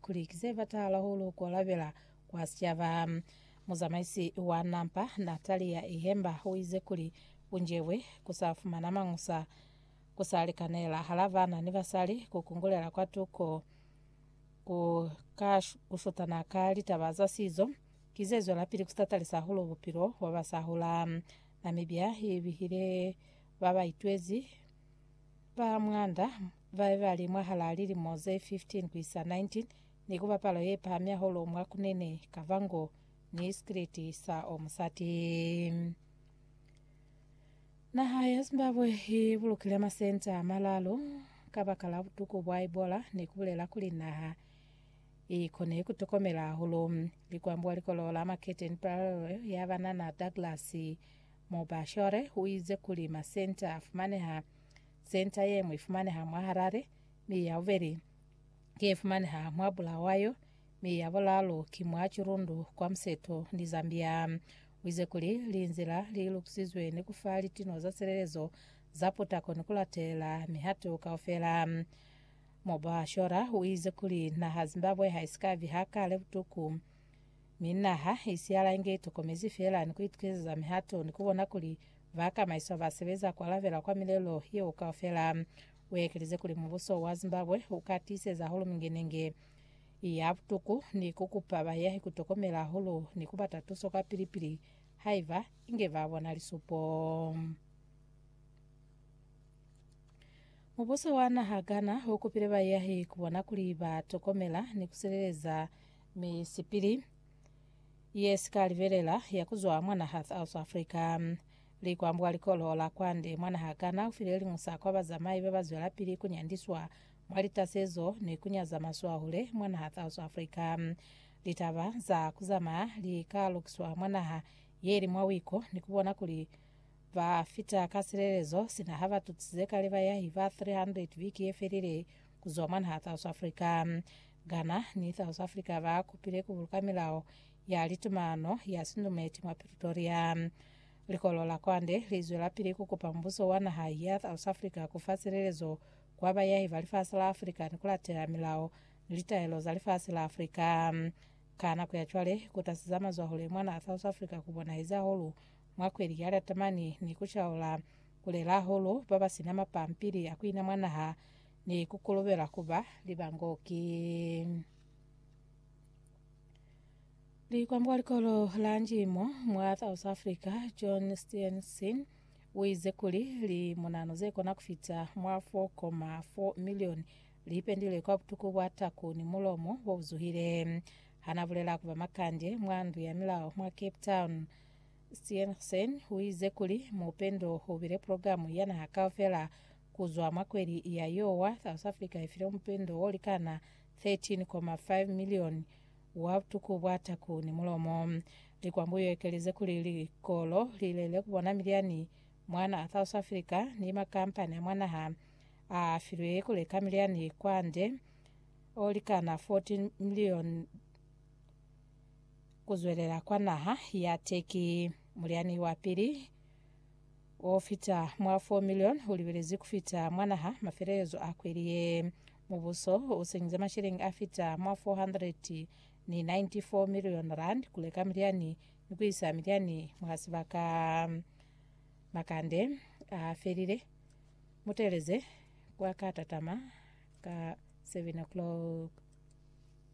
Kuli ki se bata hahulu ku alabela kwa sicaba, muzamaisi wa nampa Natalia Ihemba u ize kuli, Ku njebwe ku sa fumana mañusa ku sa likanela hala bana ni basali ku kungulela kwa tuko ku ka ku shutana ka litaba za sizo, ki ze zwelapili ku tatalisa hahulu bupilo bwa ba sa hula. Namibia i bihile ba ba itwezi ba mwanda Babe bali mwahalaa lilimo ze 15 kuisa 19 ni kuba palo yepahami hahulu mwa kunene kaba ngo ni sikiliti sa o musati. Naha ya Zimbabwe i bulukile masenta a malalu kabaka la butuku bwa Ebola ni kubulela kuli naha i kone kutokomela hahulu. Likwambi wa likolo la Maketeni Bulawayo ya banana Douglas Mubashore uize kuli masenta a fumaneha Senta ye ñwi ifumaneha mwa Harare, mi ya bubeli ki ye fumaneha mwa Bulawayo, mi ya bulaalu ki mwa Chirundu kwa museto ni Zambia. Uize kuli linzila li lukusizwe ni kufa litino za silelezo za putako ni kulatelela mihato kaufela. Mobashora uize kuli naha Zimbabwe haisika viha kale butuku Mi naha i siyala inge i tokomezi feela ni ku itukezeza mihato ni ku bona kuli ba kamaiswa ba sebeza ku alabela kwa milelo yeo kaufela. U ekelize kuli mubuso wa Zimbabwe u ka tiiseza hahulu mingenenge ya butuku ni ku kupa bayahi ku tokomela hahulu ni ku bata tuso kwa pili-pili haiba inge ba bona lisupo. Mubuso wa naha Ghana u kupile bayahi ku bona kuli ba tokomela ni ku sileleza Misipili ye si ka libelela ya ku zwa mwa naha South Africa. Likwambwa likolo la kwande mwa naha Ghana u file liñusa kwa bazamai ba ba zwelapili ku nyandiswa mwa litasezo ni ku nyaza maswahule mwa naha South Africa. Litaba za ku zamaya li ka lukiswa mwa naha ye li mwa wiko ni ku bona kuli ba fita ka silelezo sina ha ba tutsize kale bayahi ba 300 biki ye felile ku zwa mwa naha South Africa. Ghana ni South Africa ba kupile ku buluka milao ya litumano ya sindumeti mwa Pretoria. Likolo la Kwande li zwelapili ku kupa mubuso wa naha ya South Africa ku fa silelezo kwa bayahi ba lifasi la Africa ni ku latela milao ni litaelo za lifasi la Africa. Ka nako ya cwale, ku tasi za mazwahule mwa naha South Africa ku bonahezi hahulu mwa kweli ya liatamani ni ku caula ku lela hahulu ba ba sina mapampili a ku ina mwa naha Ni ku kolobela ku ba libango ki likwambo kwa likolo la njimo mwa South Africa, John Steenson, u ize kuli, Limunanu ze kona ku fita mwa 4.4 milioni li ipendile kwa butuku bwa taku ni mulomo bo bu zuhile. Ha na bulela ku ba makande mwa ndu ya milao mwa Cape Town, Steenson u ize kuli, Mupendo u bile pulogilamu ya naha kaufela Ku zwa mwa kweli ya Yowa, South Africa i file mupendo wo likana 13.5 milioni wa butuku bwa taku ni mulomo. Likwambu yo ekeleze kuli likolo li lele ku bona miliani mwa naha South Africa ni makampani a mwa naha a filwe ku leka miliani kwande o likana 14 milioni ku zwelela kwa naha ya Turkey. Muliani wa pili o fita mwa 4 milioni u libelezi ku fita mwa naha mafelelezo a kweli ye. Mubuso u senyize masheleñi a fita mwa 494 milioni rand ku leka milyani ni ku isa milyani mwa sibaka. Makande a felile. Muteleze kwa ka tatama ka 7 o'clock.